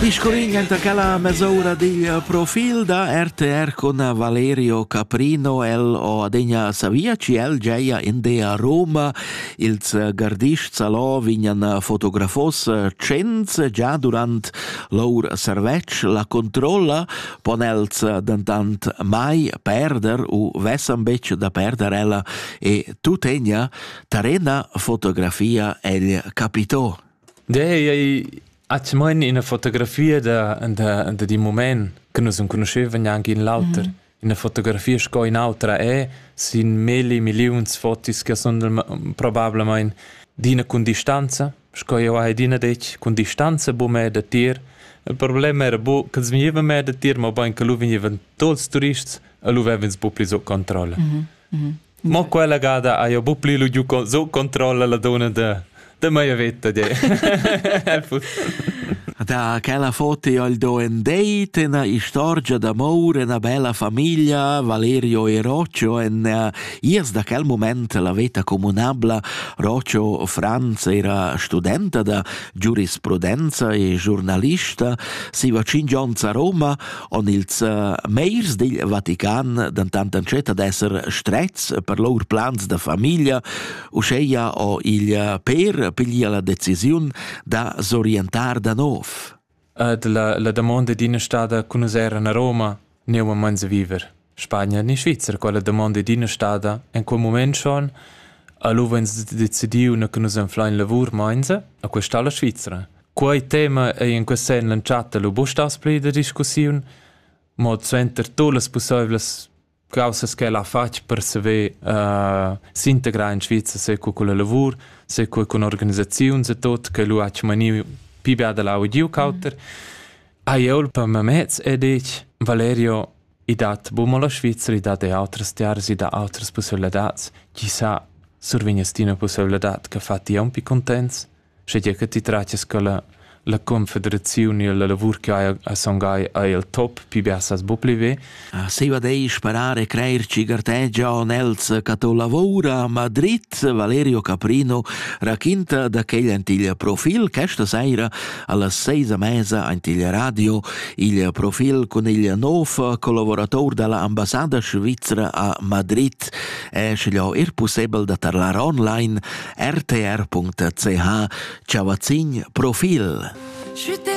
Piscolin enta quella mesoura digl profil da RTR con Valerio Caprino. El o adegna savia chi el geia in de a Roma. Ils gardists alò vignan fotografos cents già durant lour servetsch. La controlla pon els dentant mai perder u vessan betg da perder ella e tutegna tarena fotografia el capitò. Dei, ei atgnamein ina fotografia da da da d'in mument che nus enconuschevan gnanc in l'auter. Ina fotografia sco in'autra è sin milli milliuns fotos che sun probablamain d'ina cun distanza, sco jau hai adina detg, cun distanza buca datier. Il problem era buca ch'els vegnevan mei datier, mobein che lu vegnevan tuts turists e lu vev'ins buca pli sut controlla. Mo quella gada ha jeu buc pli lu giu con- sut controlla la dunna da da mia veta de. El fuss- Da quella foto ho il do en deit ena istorgia d'amor, ena bella famiglia, Valerio e Roccio, en eh, iers da quel moment la veta comunabla, Roccio Franz era studenta da giurisprudenza e giornalista, siva cinque onns a Roma, en ils eh, meirs dil Vatican dentant entschiet ad esser strets per lur plans da famiglia, uscheia o il eh, per piglia la decisiun da s'orientar da nov. Ed la, la domanda d'ina stada cun us era a Roma, neu a Manza viver. Spagna ni Svizra quella damonda ed ina stada en quel mument schon alura ins decidiu na che nus anflein lavur meinza a questa la Svizra. Quei tema ei in quest senn l'entschatta lu bustas pli da discussiun, mo suenter tu las pusseivlas causas che l'ha fatg per saver uh, s'integrar in Svizra sei co con la lavur, sei co con organisaziuns e tot che lu ha maniu pi bia da l'audio cauter. Mm -hmm. Ai eu per mamez e dic Valerio I dat buc mo la Svizra, i dat er autras tiaras, i dat autras pusseivladads. Chi sa, survegnas ti ina pusseivladad che fa ti aunc pli contents, sche che ti tratias che la, la confederaziun e la lavur che hai a son gai ei il top, pi bia sas bu pli ve. Ah, se va dei sparare creer ci gartegia on els che to lavora a Madrid, Valerio Caprino raquinta da quegl antiglia profil questa saira Alla seisa mesa aint il radio il profil cun il nov collaborator dalla ambassada svizra a Madrid è schliau er possibel da tarlar online rtr.ch chavazin profil. Je